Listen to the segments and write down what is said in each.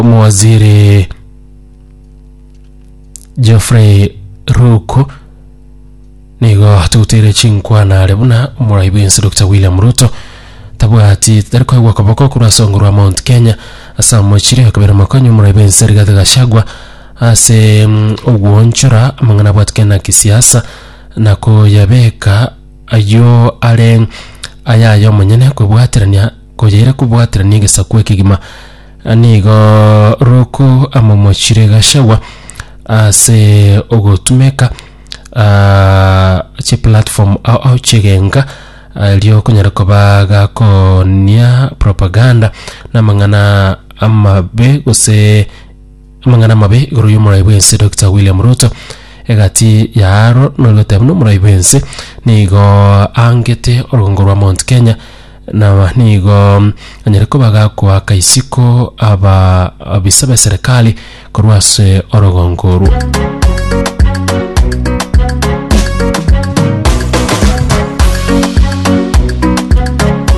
Omowaziri Geoffrey Ruku nigo togoteire chinkwana are buna omorai bwensi Dr William Ruto tabwati tari koegwa okoboko korwa ase ongo rwa Mount Kenya ase amochire akabera mokonyi omorai bwensi Rigathi Gachagua ase mm, ogwoonchora amang'ana abwatikane na kisiasa na koyabeka ayio are ayaye omonyene kwebwaterania koyaira kobwaterania egesaku ekegima Nigo roko amomochire Gachagua ase ogotumeka ah, chiplatform ao ao chi'egenka erio okonyara koba gakonia propaganda na amang'ana amabe gose Amang'ana amabe igoro y'omorai bw'ense Dokita William Ruto, Egati y'aro norigoteba buna omorai bw'ense nigo aangete orogongo rwa Mount Kenya na nigo anyare koba gakoaka isiko aba abisa ba serikali korwa ase orogongo orwo.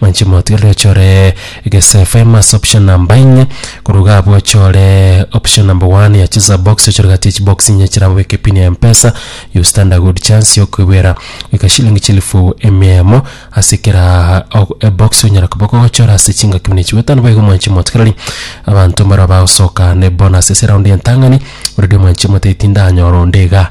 Manche motigerere ochore gese fame ase option number inye korwa iga abwo ochore option number one ya cheza box ochore gati ya chibox inye chire abwo obeke pin ya mpesa you stand a good chance ya okoiboera goika shilingi chilifu emia emo ase kera o- ebox onyara koba okogochora ase chingaki buna echi goetano boigo mwanche motigereri abanto mbare abagosoka na ebonus ase eround ya entang'ani already omwanchi omotebi tindanyora onde iga.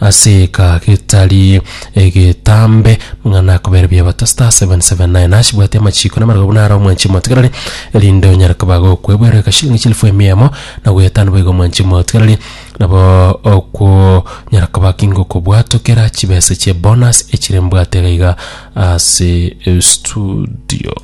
Ase eka getari egetambe, mang'ana akobere biabato star seven seven nine hash bwati amachiiko na amarogobuna are omwanchi omotigarari, erinde onyare koba gokwebuera eka shilingi chilifu emia emo na goyetano boigo omwanchi omotigarari nabo okonyara koba kingokobwatokera chibesa chie bonus echire mbwate iga iga ase studio.